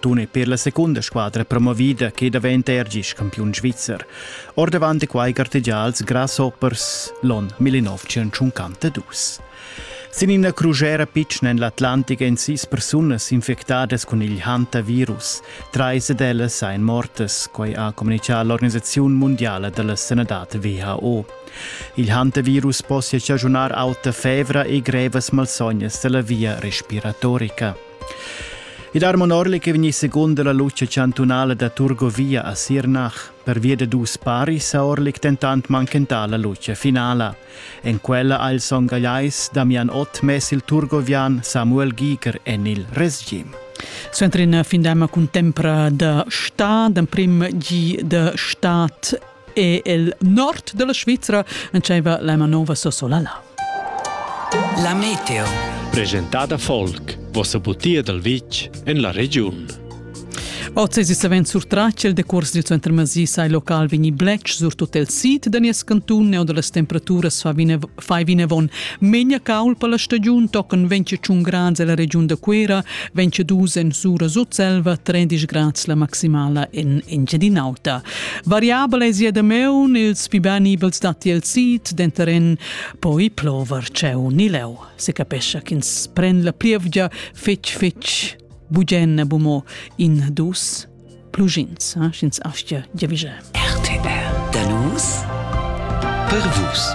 Tun è per la secunda squadra promovida che daventa er gis campiun svizzer. Ordavant è quai gartegià als Grasshoppers l'on 1952. Sin ina crusera pitschna en l'Atlantic èn sis persunas infectadas cun il hantavirus. Trais ed ellas ein mortas, quai ha communichà l'organisaziun mondiala della sanadad WHO. Il hantavirus possia stagionar auta fevra e grevas malsognas della via respiratorica. I dar monorli che vegni seconda la luce chantunala da Turgovia a Sirnach. Per via de dus pari sa orlic tentant manchenta la luce finala. En quella ha il Song Galeis Damian Ott mes il turgovian Samuel Giger en il resgim. Centrin findema cun tempra da sta, d'em prim gi de stat e el nord della Svizra entscheiva la manova Sossolala. La meteo. Presentada folk, vossa butia dal vitg en la regiun. Oz è savens surtratg il decurs dil center Masi sai local vegni bletsch sur tut il sid da nies cantun e da las temperaturas fa vina Fai vinavon megna caul per la stagiun tochen ventg tschun grads ella regiun da Cuera, ventg dus en Sura Sutselva, tredisch grads la maximala en Engiadin'Auta. Variabel è sia dameun, ils pli ben nivels datti el sid, denter en poi plover tscheu ni leu. Se capescha ch'ins pren la plievgia fetg fetg bugen bumo in dus plugins, eh, sch'ins aschia giavische. RTR. Da nus per vus.